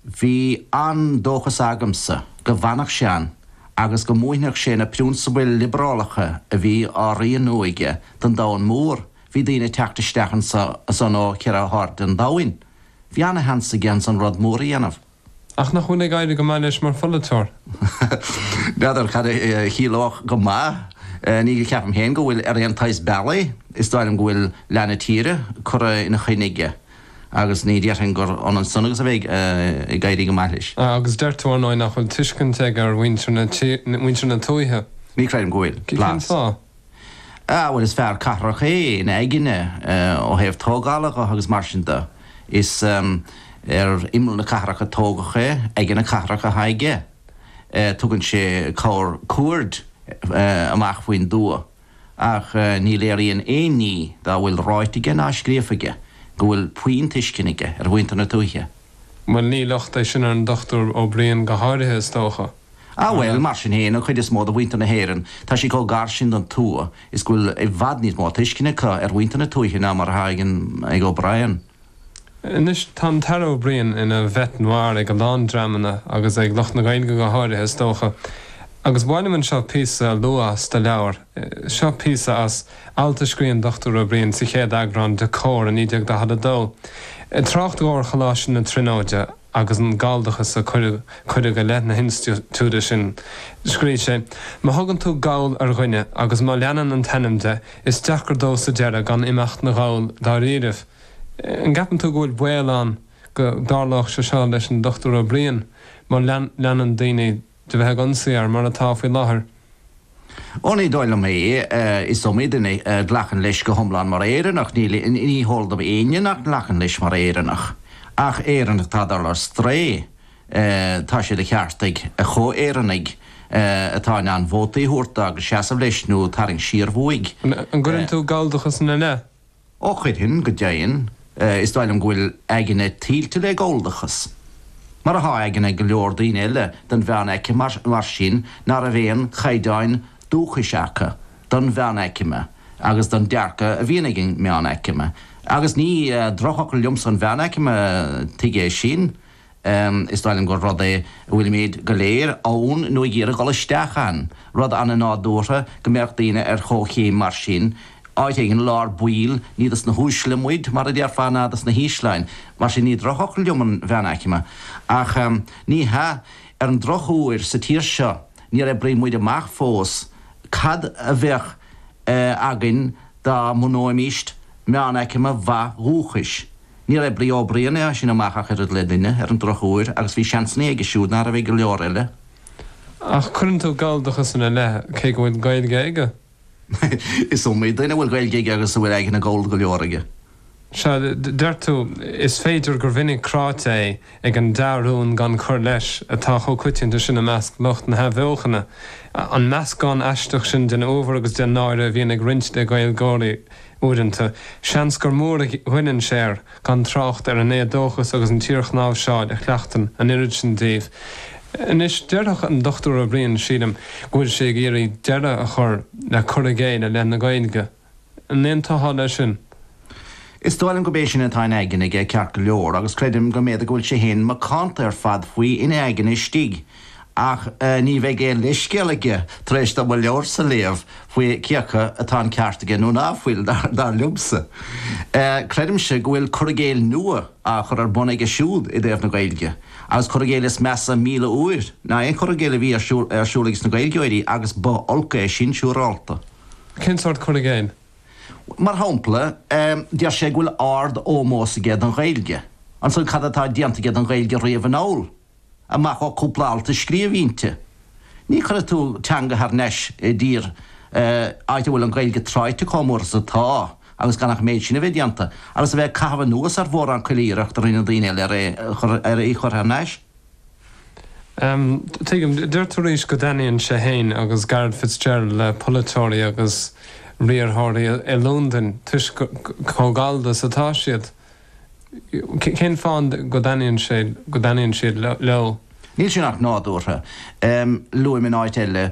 Bhí an-dóchas agamsa go bhfanfadh sé ann agus go múinfeadh sé na priúnsabail liobrálacha a bhí á rianú aige don domhan mór. Bhí daoine ag teacht isteach anseo is ann ó cheithre hairde an domhain. Bhí an-sheans aige ansan rud mór a dhéanamh. Ach nach bhfuil ag éirí go maith leis mar pholaiteoir? N'fheadar cad a chiallódh 'go maith'. Ní cheapaim féin go bhfuil ar aon tsaghas slí. Is dóigh liom go bhfuil leath na tíre curtha ina choinne aige. agus ní déarfainn gur ionann san agus a bheith ag éirí go maith leis. Agus deir tú, ar ndóigh, nach bhfuil tuiscint aige ar mhuintir na tuaithe. Ní chreidim go bhfuil. Cén fáth? Ah, bhuel, is fear cathrach é ina aigne, ó thaobh tógála dho agus mar sin do. Is ar imeall na cathrach a tógadh é, aigne na cathrach atá aige. Tugann sé corrchuaird amach faoin dtuath. ach ní léiríonn aon ní dá bhfuil ráite aige ná scríofa aige go bhfuil puinn tuisceana aige ar mhuintir na tuaithe. Bhuel, ní locht é sin ar an Dr Ó Briain go háirithe, is dócha. Ah bhuel, mar sin féin, an chuid is mó de mhuintir na hÉireann, tá sé chomh gar sin don tuath is go bhfuil i bhfad níos mó tuisceana acu ar mhuintir na tuaithe ná mar atá ag O'Brien. Anois tá an tAire Ó Briain ina bête noire ag a lán dreamanna agus ag lucht na Gaeilge go háirithe, is dócha, agus ba mhaith liom anseo píosa a lua as do leabhar. Seo píosa as alt a scrígh an Dr Ó Briain sa chéad eagrán de Comhar i 1942, i dtrácht dó ar Choláiste na Tríonóide, agus an galldachas a cuireadh i leith na hinstitiúide sin, scríobh sé, 'Má thugann tú Gall ar dhuine agus má leanann an t-ainm de, is deacair dó sa deireadh gan imeacht 'na Ghall dáiríribh. An gceapann tú go bhfuil baol ann go dtarlódh sé seo leis an Dr. Ó Briain má leanann daoine de bheith ag ionsaí air, mar atá faoi láthair. Ó, ní dóigh liom é. Is iomaí duine a ghlacann leis go hiomlán mar Éireannach. Níl, ní heol dom éinne nach nglacann leis mar Éireannach. Ach Éireannach atá ag dul ar strae, tá sé de cheart ag a chomh-Éireannaigh atá in ann vótaí a thabhairt dó agus seasamh leis nó tarraingt siar uaidh. An gcuireann tú galldachas ina leith? Ó chuirfinn go deimhin, is dóigh liom go bhfuil a aigne tuilte le galldachas, mar atá aigne go leor daoine eile den mheánaicme, mar sin, mar ná raibh aon chaighdeáin dúchais acu don mheánaicme agus don dearcadh a bhíonn ag an meánaicme. Agus ní drochfhocal liomsa an mheánaicme, tuig é sin? Is dóigh liom gur rud é a bhfuilimid go léir ann nó ag iarraidh dul isteach ann, rud ana-nádúrtha go mbeadh daoine ar chomhchéim mar sin, áit éigin i lár baill, ní dos na huaisle muid, mar a déarfá, ná dos na hísle, mar sin ní drochfhocal liom an mheánaicme, ach ní, ar an drochuair, sa tír seo níor oibrigh muid amach fós cad a bheadh againn dá mbunóimist meánaicme mhaith dhúchais. Níorbh é brí Uí Bhriain é as sin amach ach oiread le duine, ar an drochuair, agus bhí seansanna aige siúd nach raibh ag go leor eile. Ach cuireann tú Galldachas ina leith, cé go bhfuil Gaeilge aige? Is iomaí duine a bhfuil Gaeilge aige agus a bhfuil aigne Ghallda go leor aige. Sea, deir tú, is féidir gur mhinic cráite é. ag an dea-rún gan cur leis atá chomh coitianta sin i measc lucht na hathbheochana, an meascán aisteach sin den uabhar agus den náire a bhíonn ag roinnt le Gaeilgeoirí uaireanta, seans gur mór a ghoilleann sé air, gan trácht ar an éadóchas agus an tsíorchnáimhseáil a chleachtann an oiread sin díobh. Anois, déarfadh an Dr. Ó Briain, sílim, go bhfuil sé ag iarraidh deireadh a chur le cur i gcéill i leith na Gaeilge, An aontófá leis sin. Is dóigh liom gob é sin atá in' aigne aige ceart go leor, agus creidim go mb'fhéidir go bhfuil sé féin macánta ar fad faoi in' aigne istigh, ach ní bheidh aon leithscéal aige, tar éis dom mo leabharsa a léamh, faoi cé acu atá an ceart aige nó ná fuil, dar liomsa. Creidimse go bhfuil cur i gcéill nua á chur ar bun aige siúd i dtaobh na Gaeilge, agus cur i gcéill is measa míle uair ná aon chur i gcéill a bhí ar siúl ag sna Gaeilgeoirí, agus ba olc é sin, siúrálta. Cén sórt cur i gcéill? Mar shampla, deir sé go bhfuil ard-ómós aige don Ghaeilge. Ansan cad atá déanta aige don Ghaeilge riamh anall, amach ó cúpla alt a scríobh inti? Ní chuirfidh tú teanga thar nais i dtír, áit a bhfuil an Ghaeilge tráighte chomh mór is atá, agus gan ach an méid sin a bheith déanta, agus a bheith ag caitheamh anuas ar mhórán cuile rud a rinne daoine eile ar í a chur thar nais. Tuigim. Deir tú arís go dtaitníonn sé féin agus Garret Fitzgerald le polaiteoirí agus riarthóirí i Londain toisc chomh gallda is atá siad. Cén fáth go dtaitníonn sé go dtaitníonn siad leo? Níl sin ach nádúrtha. Luaim in áit eile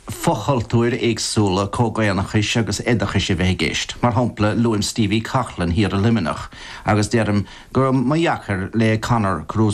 fochultúir éagsúla comhdhaonnachais agus oideachais a bheith i gceist. Mar shampla, luaim Stevie Coughlin thiar i Luimneach agus deirim go mba dheacair le Conor Cruise